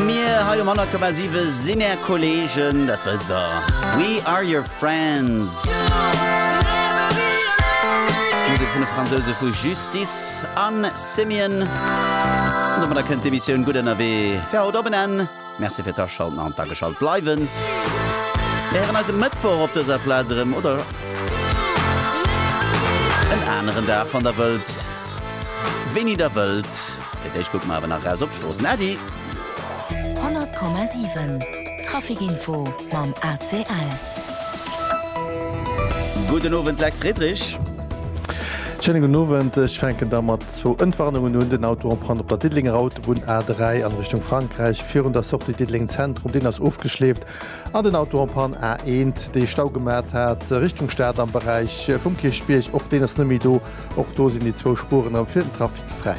Mir hei um 100,7 sinn är Kolleegen, dat wësst der. We are your friends. Musek vun de Fransouse vu Justice an Simian. An domadder kënnt d'Emissioun Gutt ënnerwee fir haut op en Enn. Merci fir d'Aschalten an d'Ageschalt bleiwen. Mir héieren eis e Mëttwoch op dëser Plaz erëm oder en aneren Dag, wann der wëllt, wéini der wëllt. Fir d'éischt kucke mer awer nach eraus op d'Stroossen, Äddi! 100,7 Traficinfo mam ACL. Gudden Owend, Lex Friedrich. Schéine gudden Owend. Ech fänken da mat zwou Entwarnungen un. Den Auto en panne op der Diddelenger Autobunn A3 an Richtung Frankräich virun der Sortie Diddeleng Zentrum. Deen ass ofgeschleeft an den Auto en panne A1, dee Stau gemat hat Richtung Stad am Beräich vum Kierchbierg, och deen ass net méi do. Och do sinn déi zwou Spueren am fir den Trafic fräi.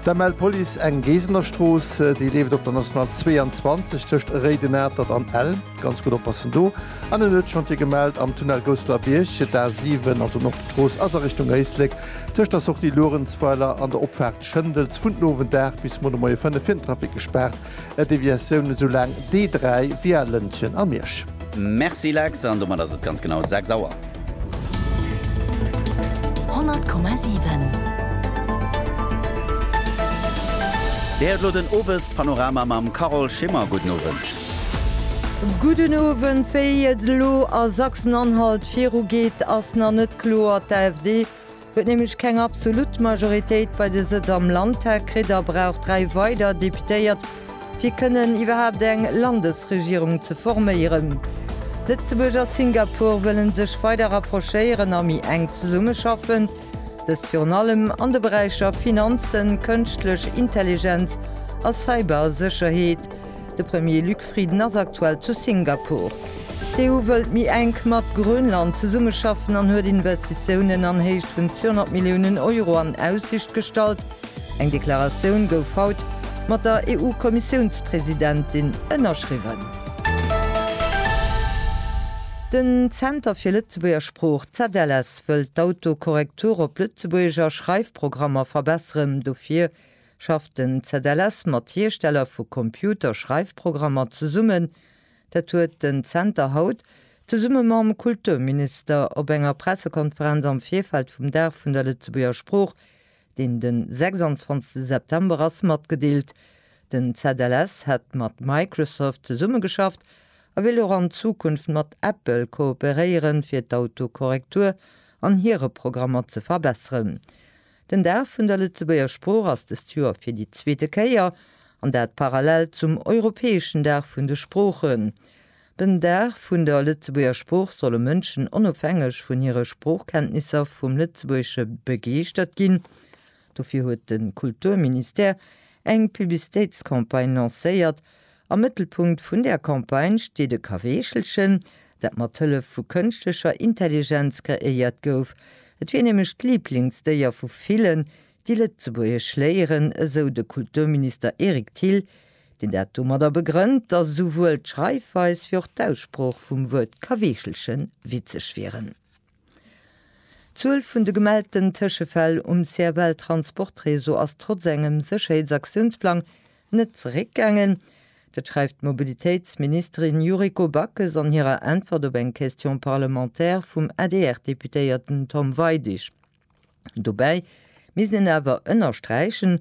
D'ML Police eng Geesener Strooss, déi leeft op der National 22 tëscht Réidenatert an Ell. Ganz gutt oppassen do. An en huet Chantier gemellt am Tunnel Gousseler Bierg. D'A7, also Nordstrooss, ass a Richtung Éislek tëscht der Sortie Luerenzweiler an der Opfaart Schëndels vun den Owend 8 bis mol de Moie 5 fir den Trafic gespaart. Deviatioun esou laang dee 3 wéi a Lëntgen a Miersch. Merci Lex, an domat ass et ganz genau 6 Auer. 100,7. Dir héiert elo den Owespanorama mam Carole Schimmer. Gudden Owend. Gudden Owend. Wéi et elo a Sachsen-Anhalt virugeet, ass nach net kloer. D'AfD Huet nämlech keng absolut Majoritéit bei de Sëtz am Landtag kritt a brauch dräi weider Deputéiert, fir kënnen iwwerhaapt eng Landesregierung ze forméieren. Lëtzebuerg a Singapur wëllen sech weider rapprochéieren a méi enk zesummeschaffen, dëst virun allem an de Beräicher Finanzen, Kënschtlech Intelligenz a Cybersécherheet. De Premier Luc Frieden ass aktuell zu Singapur. D'EU wëllt méi enk mat Grönland zesummeschaffen an huet Investitiounen an Héicht vun 200 Milliounen Euro an Aussicht gestallt. Eng Deklaratioun gouf haut mat der EU-Kommissiounspresidentin ënnerschriwwen. Den Zenter fir Lëtzebuerger Sprooch, ZLS, wëllt d'Autokorrektur op Lëtzebuergeger Schreifprogrammer verbesseren. Dofir Schafft den ZLS mat Hiersteller vu Computer-Schreifprogrammer zesummen? Dat huet den Zenter haut, zesumme mam Kulturminister, op enger Pressekonferenz am Virfeld vum Dag vun der Lëtzebuerger Sprooch, deen den 26 September ass, matgedeelt. Den ZLS hätt mat Microsoft zesummegeschafft a wéilt och an Zukunft mat Apple kooperéieren, fir d'Autokorrektur an hire Programmer ze verbesseren. Den Dag vun der Lëtzebuerger Sprooch ass dëst Joer fir déi zweete Kéier, an dat parallel zum europäeschen Dag vun de Sproochen. Den Dag vun der Lëtzebuerger Sprooch solle Mënschen onofhängeg vun hire Sproochkenntnisser vum Lëtzebuergesche begeeschtert ginn. Dofir huet de Kulturministère eng Publicitéitscampagne lancéiert, Am Mëttelpunkt vun der Campagne steet e Kaweechelchen, dat mat Hëllef vu kënschtlecher Intelligenz kreéiert gouf. Et wier nämlech d'Liblingsdéier vu villen, déi Lëtzebuergesch léieren, esou de Kulturminister Eric Thill, deen dat domadder begrënnt, datt esouwuel d'Schreifweis wéi och d'Aussprooch vum Wuert Kaweechelchen witzeg wieren. D'Zuel vun de gemellten Tëschefäll um CFL-Transportreseau ass trotz engem Sécherheetsaktiounsplang net zeréckgaangen. Dat schreift d'Mobilitéitsministerin Yuriko Backes an hirer Äntwert op eng Question parlementaire vum ADR-Deputéierten Tom Weidig. Dobäi misst een awer ënnersträichen,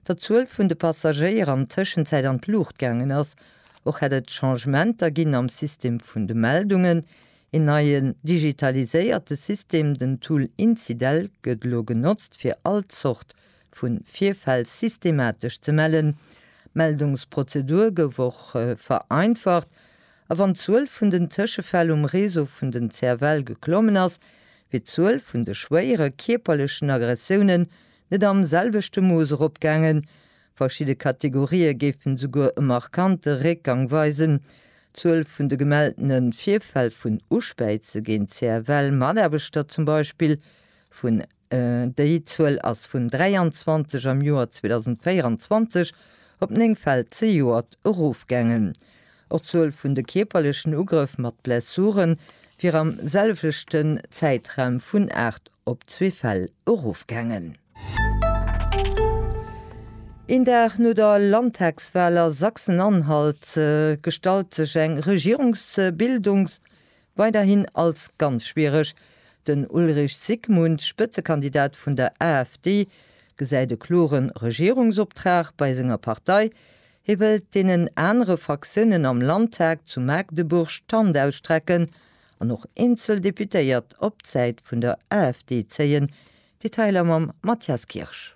datt d'Zuel vun de Passagéier an Tëschenzäit an d'Luucht gaangen ass. Och hätt et Changementer ginn am System vun de Meldungen. Een neien digitaliséierte System, den Tool Incidel, gëtt elo genotzt, fir all Zort vu Virfäll systematesch ze mellen. D'Meldungsprozedur gouf och vereinfacht, A wann d'Zuel vun den Tëschefäll um Réseau vun den CFL geklommen ass, wier d'Zuel vun de schwéiere kierperlechen Aggressiounen net am selwechte Mooss eropgaangen. Verschidde Kategorië géifen esouguer e markante Réckgang weisen. D'Zuel vun de gemelltene Virfäll vun Uspäize géint CFL-Mataarbechter zum Beispill vun. Déi Zuel ass vun 23 am Joer 2024 op 9 Fäll zejoert erofgaangen. Och d'Zuel vun de kierperlechen Ugrëff mat Blessure wier am selwechten Zäitraum vun 8 op zwee Fäll erofgaangen. Een Dag no der Landtagswal a Sachsen-Anhalt gestallt sech eng Regierungsbildungs Weiderhin als ganz schwiereg. Den Ulrich Zygmunt, Spëtzekandidat vun der AfD, gesäit e klore Regierungsoptrag bei senger Partei. Hie wëllt deenen anere Fraktiounen am Landtag zu Magdeburg d'Hand ausstrecken an och eenzel Deputéiert op d'Säit vun der AfD zéien. Detailer mam Mathias Kirsch.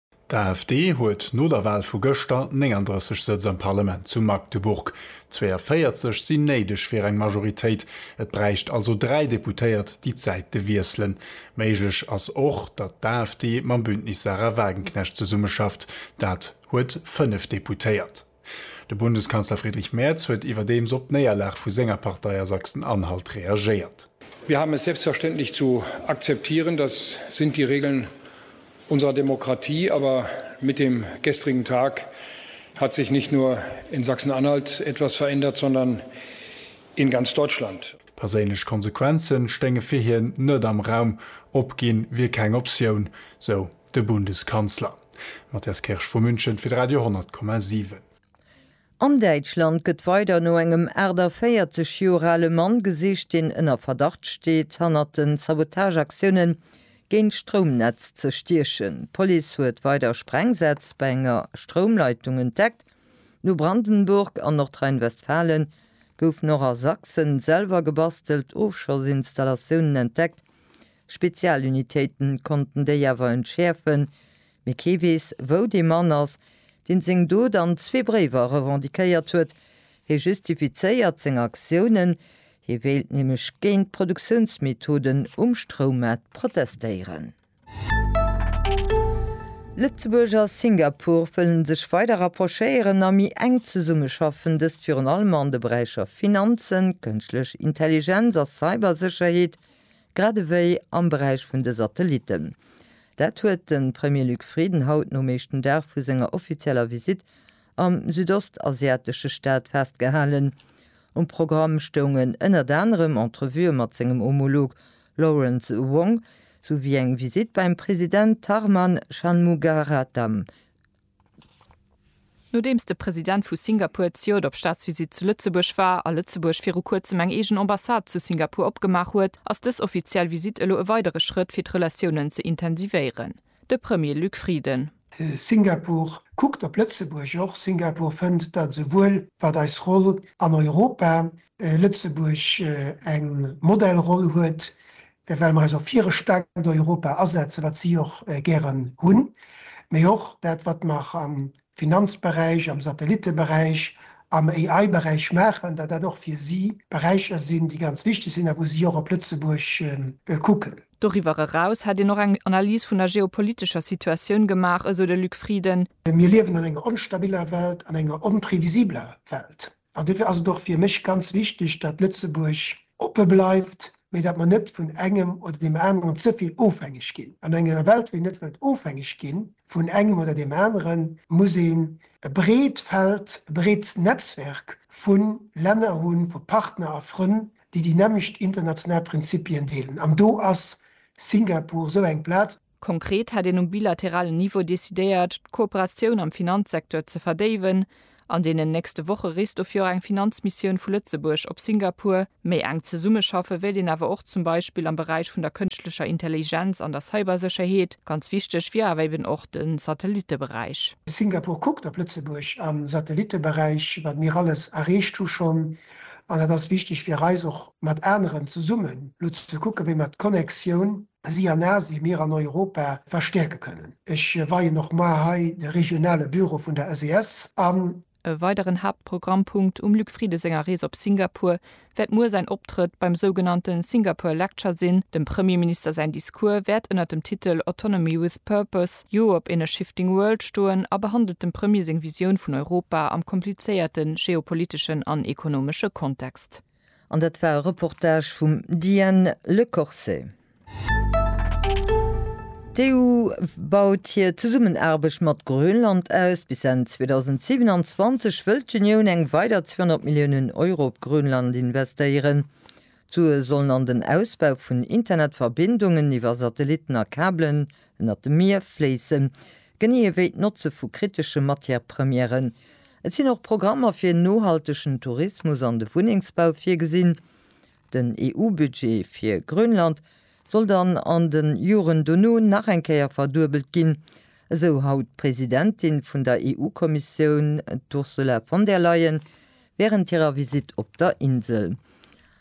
D'AfD huet no der Wal vu gëschter 39 Sëtz am Parlament zu Magdeburg. 42 sinn néideg fir eng Majoritéit, et bräicht also dräi Deputéiert, déi d'Säite wiesselen. Méiglech ass och, datt d'AfD mam Bündnis Sarah Wagenknecht zesummeschafft, dat huet fënnef Deputéiert. De Bundeskanzler Friedrich Merz huet iwwerdeems op d'Néierlag vu senger Partei a Sachsen-Anhalt reagéiert. Wir haben es selbstverständlich zu akzeptieren, das sind die Regeln unserer Demokratie, aber mit dem gestrigen Tag hat sich nicht nur in Sachsen-Anhalt etwas verändert, sondern in ganz Deutschland. Perséinlech Konsequenze stéinge fir hien net am Raum, opginn wier keng Optioun, sou De Bundeskanzler, Matthias Kirsch vu München fir de Radio 10,7. An Däitschland gëtt weider no engem 48 Joer ale Mann gesicht, deen ënner Verdacht steet, hannert den Sabotageaktioune géint d'Stroumnetz ze stiechen. D'Police huet weider Sprengsätz bei enger Stroumleitung entdeckt. No Brandenburg an Nordrhein-Westfalen goufen och a Sachsen selwer gebastelt Ofschossinstallatiounen entdeckt, Spezialunitéiten konnten déi awer entschäerfen, mee kee weess, wou dee Mann ass, deen seng Dot an zwee Bréiwer revendiquéiert huet. Hie justifizéiert seng Aktiounen, hie wéilt nämlech géint d'Produktiounsmethoden um Stroummart protestéieren. Lëtzebuerg a Singapur wëllen sech weider rapprochéieren a méi enk zesummeschaffen, dëst virun allem an de Beräicher Finanzen, Kënschtlech Intelligenz a Cybersécherheet, Grad ewéi am Beräich vun de Satellitten. Dat huet de Premier Luc Frieden haut nom éischten Dag vu senger offizieller Visitt am südostasiatesche Staat festgehalen. Um Programm stoungen ënnert anerem Entrevue mat sengem Homolog Lawrence Wong, souwéi eng Visitt beim President Tharman Shanmugaratnam. Nodeems de President vu Singapur d'Ciot op Staatsvisitt zu Lëtzebuerg war a Lëtzebuerg viru kuerzem eng eegen Ambassade zu Singapur opgemaach huet, ass dës offiziell Visitt elo e weidere Schrëtt fir d'Relatiounen ze intensivéieren, de Premier Luc Frieden. Singapur kuckt op Lëtzebuerg och. Singapur fënnt, datt esouwuel wat eis Roll an Europa, Lëtzebuerg eng Modellroll huet, well mer eis och fir e staarkt Europa asetzen, wat si och gären hunn, mee och dat, wat mer am Finanzberäich, am Satellitteberäich, am AI-Beräich maachen, datt dat och fir si Beräicher sinn, déi ganz wichteg sinn a wou si och op Lëtzebuerg kucken. Doriwwer eraus hätt een och eng Analys vun der geopolitescher Situatioun gemaach, esou de Luc Frieden. Mir liewen an enger onstabiller Welt, an enger onprevisibeler Welt. An dofir ass et och fir mech ganz wichteg, datt Lëtzebuerg oppe bleift, mee datt mer net vun engem oder deem aneren ze vill ofhängeg ginn. An enger Welt, wou een net wëllt ofhängeg gi vun engem oder deem aneren, muss een e breet Feld, e breet Netzwerk vu Länner hunn, vu Partner a Frënn, déi déi nämmlecht international Prinzipien deelen. An do ass Singapur esou eng Plaz. Konkret hätt een um bilateralen Niveau decidéiert, d'Kooperatioun am Finanzsecteur ze verdéiwen. An deenen nächste Woche reest dofir och eng Finanzmissioun vu Lëtzebuerg op Singapur. Méi enk zesummeschaffe wéilt een awer och zum Beispill am Beräich vun der kënschtlecher Intelligenz an der Cybersécherheet. Ganz wichteg wier awer eben och de Satellitteberäich. Singapur kuckt op Lëtzebuerg am Satellitteberäich, wat mir alles erreecht hu schonn. An et ass wichteg fir eis och mat aneren zesummen elo ze kucken, wéi mer d'Connexioun si an Asien, mir an Europa verstäerke kënnen. Ech weien och mar hei de regionale Büro vun der SES an. E weideren Haaptprogrammpunkt um Luc Frieden senger Rees op Singapur wäert muer säin Optrëtt beim sougenannte Singapore Lecture sinn. Dem Premierminister säin Discours wäert ënnert dem Titel Autonomy with Purpose, Europe in a Shifting World stoen a behandelt dem Premier seng Visioun vun Europa am komplizéierte geopoliteschen an ekonomesche Kontext. An dat war e Reportage vum Diane Lecorset. D'EU baut hir Zesummenaarbecht mat Grönland aus. Bis Enn 2027 wëll d'Unioun eng weider 200 Milliounen Euro op Grönland investéieren. D'Sue sollen an den Ausbau vun Internetverbindungen iwwer Satellitten a Kabelen ënnert dem Mier fléissen. Genee ewéi d'Notze vu kritesche Matière-Premièren. Et sinn och Programmer fir en nohaltegen Tourismus an de Wunnengsbau virgesinn. Den EU-Budget fir Grönland soll dann an de Joren dono nach eng Kéier verduebelt ginn, esou haut d'Presidentin vun der EU-Kommissioun, d'Ursula von der Leyen, wärend hirer Visitt op der Insel.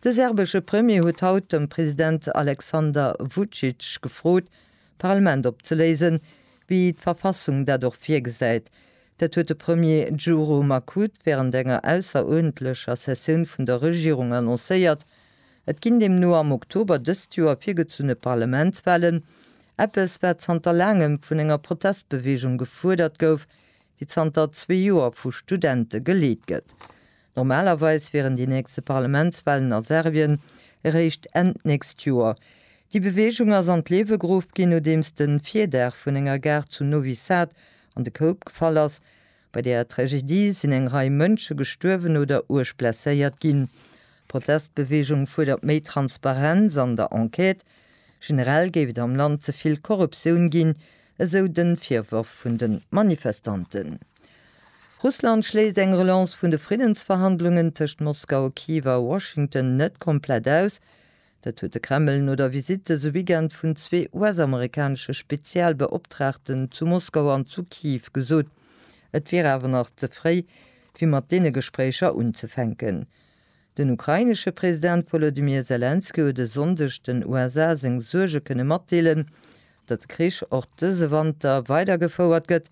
De serbesche Premier huet haut de President Aleksander Vucic gefrot, d'Parlament opzeléisen, wéi d'Verfassung dat och virgesäit. Dat huet de Premier Djuro Makut wärend enger ausseruerdentlecher Sessioun vun der Regierung annoncéiert. Et ginn deemno am Oktober dëst Joer virgezunne Parlamentswalen, eppes wat zanter laangem vun enger Protestbeweegung gefuerdert gouf, déi zanter zwee Joer vu Studente geleet gëtt. Normalerweis wieren déi nächste Parlamentswahlen a Serbien eréischt Enn d'nächst Joer. Déi Beweegung ass an d'Liewe geruff ginn, nodeems de Virdaach vun enger Gare zu Novi Sad an de Koup gefall ass. Bei där Tragedie sinn eng Rei Mënsche gestuerwen oder uerg blesséiert ginn. D'Protestbeweegung fuerdert méi Transparenz an der Enquête. Generell géif et am Land ze vill Korruptioun ginn, esou de Virworf vun de Manifestanten. Russland schléisst eng Relance vun de Friddensverhandlungen tëscht Moskau a Kiew a Washington net komplett aus. Dat huet de Kreml no der Visitt dëse Weekend vun zwee US-amerikanesche Spezialbeoptraagten zu Moskau an zu Kiew gesot. Et wier awer nach ze fréi, fir mat deene Gespréicher unzefänken. Den ukrainesche President Wolodymyr Selenskyj huet e Sonndeg den USA seng Suerge kënne matdeelen, datt de Krich och dëse Wanter weidergefouert gëtt.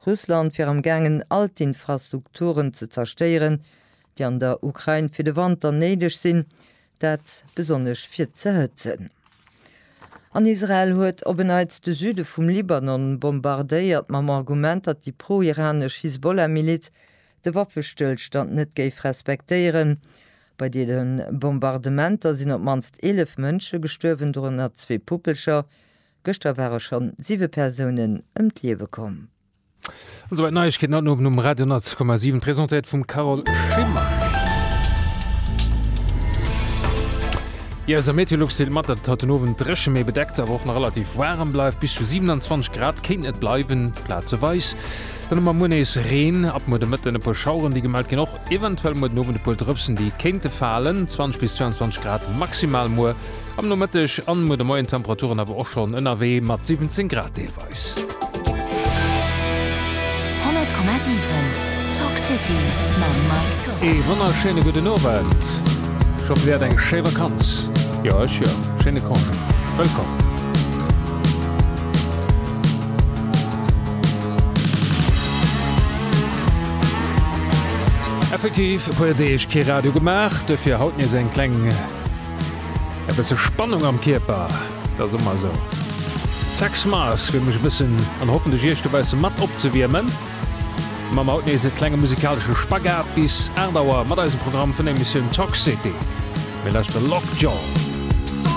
Russland wier am gaangen all d'Infrastrukturen ze zerstéieren, déi an der Ukrain fir de Wanter néideg sinn, dat besonnesch fir ze hëtzen. An Israel huet op en Neits de Süde vum Libanon bombardéiert, mam Argument, datt déi pro-iranesch Hisbollah-Miliz de Waffestëllstand net géif respektéieren. Bei deene Bombardementer sinn op d'mannst 11 Mënsche gestuerwen, dorënner zwee Puppelcher. Gëschter ware schonn siwe Persounen ëm d'Liewe komm. An souwäit d'Neiegkeeten haut den Owend um Radio 100,7, presentéiert vum Carole Schimmer. Jo, esou Meteolux deelt mat, datt et haut den Owend dréchen, mee bedeckt, awer och nach relativ waarem bleift. Bis zu 27 Grad kéinten et bleiwen, plazeweis Dann hu mer muer nees Reen, ab muer de Mëtten e puer Schaueren, déi gemellt ginn. Och eventuell muer den Owend e puer Drëpsen, déi kéinte falen. 20 bis 22 Grad maximal muer am Nomëtteg an muer de Moien. D'Temperaturen awer och schonn ënnerwee mat 17 Grad deelweis. 100,7 Talk City mam Mike Tock. Ee wonnerschéine gudden Owend. Ech hoffe dir hat eng schéi Vakanz. Jo, ech jo. Schéine Congé. Wëllkomm. Effektiv e puer Deeg kee Radio gemaach, dofir haut nees eng kleng e bësse Spannung am Kierper, dat ass ëmmer esou. Sex Mars fir mech e bëssen an hoffentlech iech dobausse mat opzewiermen. Mam haut nees e klenge musikalesche Spagat bis 8 Auer mat eisem Programm vun der Emissioun Toxity. Mir lauschteren Lockjaw.